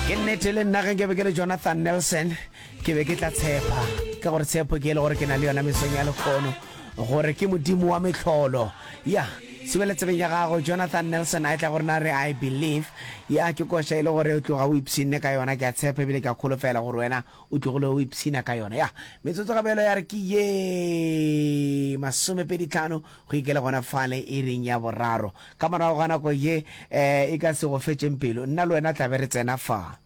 ke nnete le nna ge nke be ke le jonathan nelson ke be ke tla tshepa ka gore tshepo ke e le gore ke na le yona mesong ya lekgono gore ke modimo wa metlholo ya sebele tsebeng ya gago jonathan nelson a e tla gore na re i believe ya ke koša e le gore o tloga o ipshinne ka yona ke a tshepa ebile ke a kgolofela gore wena o tlogile o ipshina ka yona ya metsotso gabelo ya re ke ye masomepedi tlhano Go ikele gona fale iring ya boraro. Ka morago ga nako ye e ka se go fetšeng pelo, nna le wena tla be re tsena fa.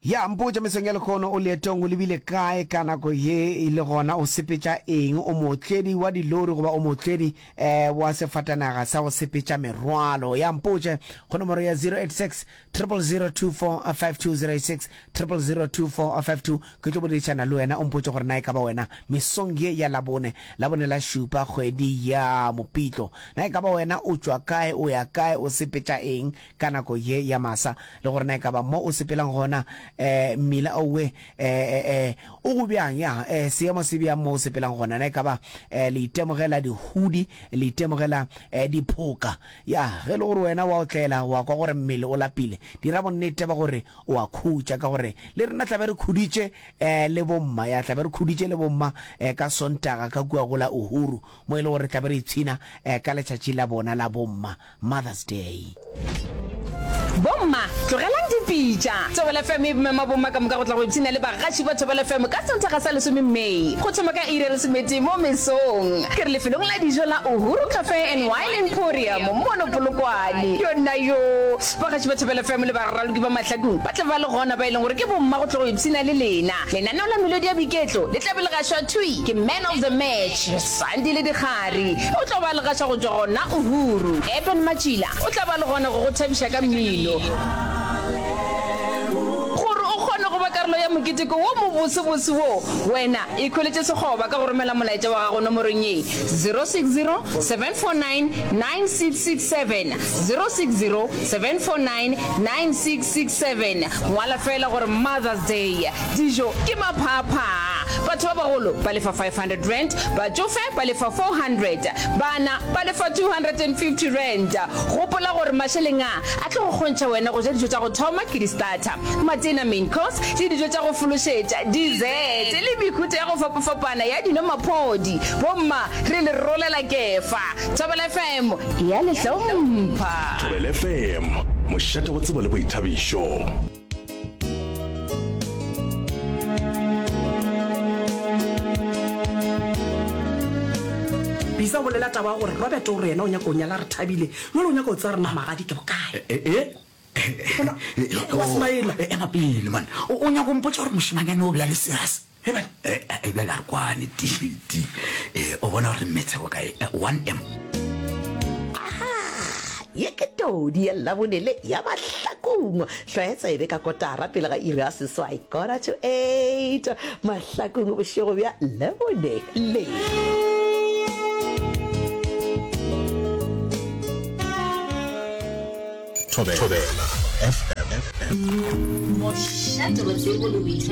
Ya mpotša, Mesong ya lehono o leetong, o lebile kae ka nako ye? Le gona o sepetša eng? O mootledi wa dilori goba o mootledi? wa sefatanaga sa go sepetša merwalo ya mpotše go nomoro ya 086000245206, 002452, ke tlo boledišana le wena o mpotše gore na e ka ba wena mesong ye ya labone labone la šupa kgwedi ya mopitlo na e ka ba wena o tšwa kae o ya kae o sepetša eng ka nako ye ya masa, le gore na e ka ba mo o sepelang gona, eh, mmila owe, eh, eh, eh, o go bjang, ya, eh, seemo se bjang mo o sepelang gona, na e ka ba, eh, le itemogela dihudi, le itemogela, eh, diphoka, ya, ge e le gore wena wa otlela, wa kwa gore mmele o lapile, dira bonnete ba gore o a khutša, ka gore le rena tla be re khuditše, eh, le bomma, ya, tla be re khuditše le bomma, eh, ka Sontaga ka kua go la Uhuru, mo e le gore re tla be re ipshina, eh, ka letšatši la bona la bomma, Mother's Day. Bomma, tlogelang dipitša. Thobela FM e mema bomma ka moka go tla go ipshina le bagaši ba Thobela FM ka Sontaga sa lesome May, go thoma ka iri ya lesomete mo mesong. Ke re lefelong la dijo la Uhuru Cafe and Wine Emporium mono Polokwane. Yona yoo, bagaši ba Thobela FM le baraloki ba mahlakong ba tla ba le gona, ba e leng gore ke bomma go tla go ipshina le lena. Lenaneo la melodi ya boiketlo le tla be le gašwa thwi ke Man of the Match. Sandi le Dikgari o tlo ba legaša go tšwa gona Uhuru. Eben Matšila o tla ba le gona go go thabiša ka mmino. Gore o kgone go ba karolo ya moketeko wo mobosebose wo, wena ikhweletše sekgoba ka go romela molaetša wa gago nomorong ye, 0607499667, 0607499667. Ngwala feela gore Mother's Day. Dijo ke maphaaphhaa. Batho ba bagolo ba lefa R500, batšofe ba lefa R400, bana ba lefa R250. Gopola gore mašeleng a a tlo go kgontšha wena go ja dijo tša go thoma ke di-starter, matena, main course, le dijo tša go fološetša, dessert, le mehuta ya go fapafapana ya dino, maphodi. Bomma re le rolela kefa. Thobela FM e a le hlompha. Thobela FM, mošate wa tsebo le boithabišo. bisa o bolela taba ya gore robert o re yena o nyaka o nyala re thabile jale o nyaka o tsaya rena magadi ke bokae eh, eh, eh. Bona, wa smaela. ema pele man o o nyako mpotsa gore mošemanyane o bja le serious He bale, e, e bjale a re kwane, TT, e, o bona gore metse go kae, e, 1M. Aha! Ye ke todi ya Labonele ya mahlakong. Tlwaetsa e be ka kotara pele ga iri ya seswai, quarter to eight, mahlakong bošego bja Labonele. Thobela FM. Mošate wa tsebo le boithabišo.